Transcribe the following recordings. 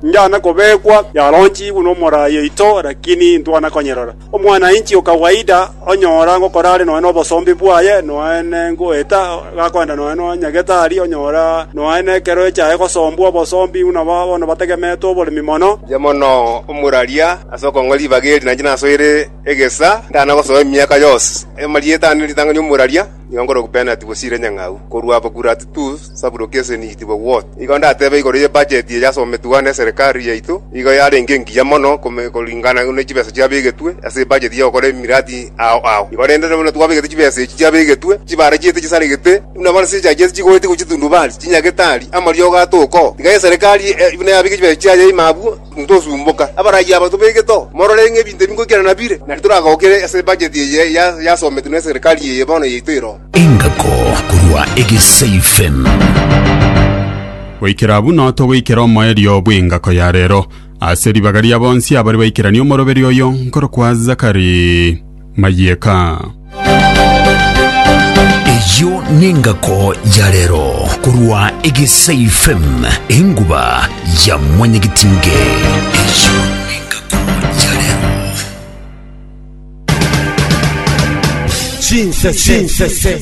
Njana kobekwa, yaronchigwe nomorai oito, lakini intwana konyerora. Omwana-inchi o kawaida onyora ngokora are nonya nobosombe bwaye, nonya nengoeta gakoenda nonya nonyagete aria, onyora nonya nekero echaye gosombwa obosombe buna bono bategemetwe oboremi mono. Inche mono omoraria ase okong'a ribaga eri, na inche nasoire egesa, ntana gosoa emiaka yonsi. Amarieta ane ritang'ani omoraria. Nigo nkorokwa penati bosire nyang'au korwa aba Gurat tu Sabro Keseni itwe Wot. Igo ndatebe igoro ye bajeti eye yasometwe ne Serikali yaito, igo yarenge engiya mono koringana ne chibesa chiabegetwe ase ebajeti ya gokora emiradi ao ao. Igo rende buna twabegete chibesa echi chiabegetwe, chibarachiete chisaregete, buna bono chichachiete chigoetigwa chitundubari, chinyagitari, amariogo atoko. Tiga Eserikali buna yabeke chibesa chiaye ime abwo. Ntosumboka, abarayia aba tobegete oo, morore ng'a ebinto ebi ngoikerana nabire, na titoragokire ase ebacheti eye yasometwe neserikari eye bono yaito ero. Engako korwa Egeseifen. Goikera buna togoikera omoerio bw'engako ya reero. Ase ribaga ria bonsi abare baikeranie omoroberio oyo nkorokwa Zakari Mayeka. Eyio nengako ya rero korwa Egesai FM enguba ya mwanyagitinge. Eyio nengako ya rero. Chinsese. Chinsese.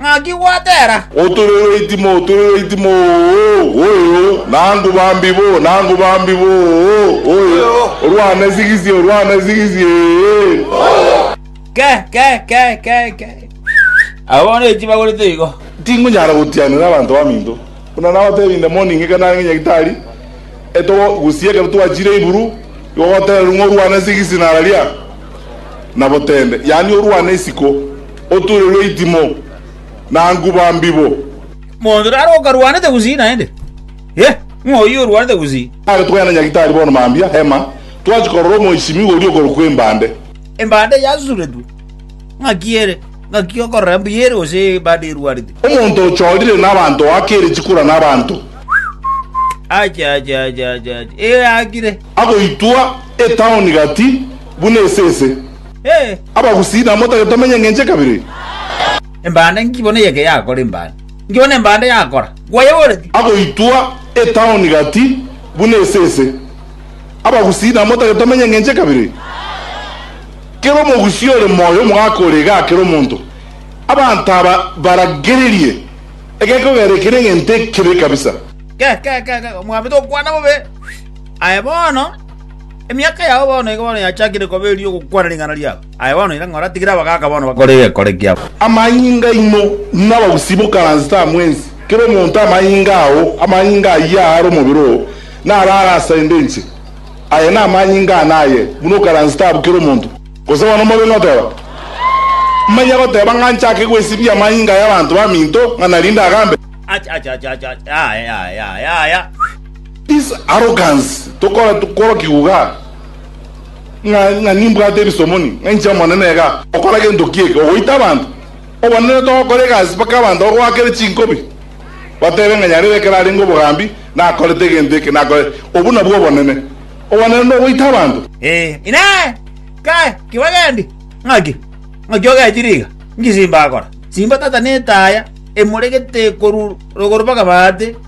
Ng'aki gwatera? Oturerwe itimo, oturerwe itimo, oo, oyo, nangu bambi bo, nangu bambi bo, oo, oyo, orwane sigisi, orwane sigisi, ee. Ke, ke, ke, ke, ke. Aba bono echi bagorete igo. Tinkunyara gotianera abanto baminto, buna nabateebie inde mono ing'e ekero narenge nyagitari, etogo gusii ekero twachire Iburu, igo gotererwa ng'a orwane sigisi nararia, na botende, yaani orwane isiko. Oture rweitimo na nguba mbibo. Monto naro okarwanete gusii naende? Ee, ng'o oyio orwanete gusii? Naki togende na Nyagitari bono mambia Emma, twachia korora omoisimigwa oria okorokwa Embande. Embande eyasusuretwe. Ng'aki ere? Ng'aki okorora embuya ere gose embande erwarete? Omonto ochorire nabanto oakere chikura nabanto. Ache, ache, ache, ache, ache, ee, akire. Agoitwa etaoni gati buna esese. Ee! Abagusii namotake tomenye engencho ya kabere eye. Embanda inki bono eye ekeyakora embanda? Inki bono embanda yakora? Gwayeboreti? Agoitwa etaoni gati buna esese. Abagusii namotake tomenye engencho ya kabere eye. Kera omogusii ore moyo omogaka ore iga akera omonto. Abanto aba baragererie egekogera eke negento ekebe kabisa. Ke, ke, ke, ke, omwami tokwana bobe aye bono. Emiaka yao bono iga bono yachakire koba eri'ogokwana ring'ana riabo. Aye bono ira ng'ora, tigire abagaaka bono bakore egekore kiabo. Amanyinga aino nabausi bokaransete amo ense, kera omonto amanyinga ao, amanyinga ayio aare omobere oo, naro are ase ende enchera. Aya namanyinga ane aye, buna okaransete abwo kera omonto. Gose bono more goteba, Manya goteba ng'a nchake gwesibia amanyinga y'abanto baminto, ng'a narinde agambe? Acha, acha, acha, acha, acha, aye, aye, aye, aye, aye. This arrogance tokora korokigwa iga ng'a ng'a nimbwate ebisomoni ng'a inche omonene iga okora gento ki eke ogoita abanto obonene togokora egasi mpaka abanto bagoakere chinkobi batebe ng'a nyarebe ekero arenge obogambi nakorete egento eke nakore obwo nabwo obonene obonene nogoita abanto. Ee, Inee! Kae, kibagendi! Ng'aki? Ng'aki ogechire iga? Nki simba gokora? Simba tata netaya, emoregete korwa rogoro mpaka baate.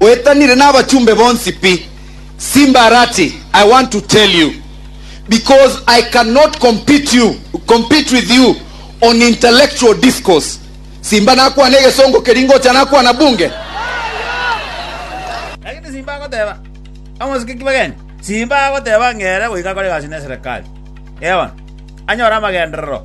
Oetanire nabachumbe bonsi pi. Simbarati I want to tell you because I cannot compete you compete with you on intellectual discourse simba nakwana egesongo keria ngocha nakwana bunge. Lakini simba agoteba omosike ki bageni simba agoteba ng'ere goika akore egasi neserekari. Eono anyore amagenderero.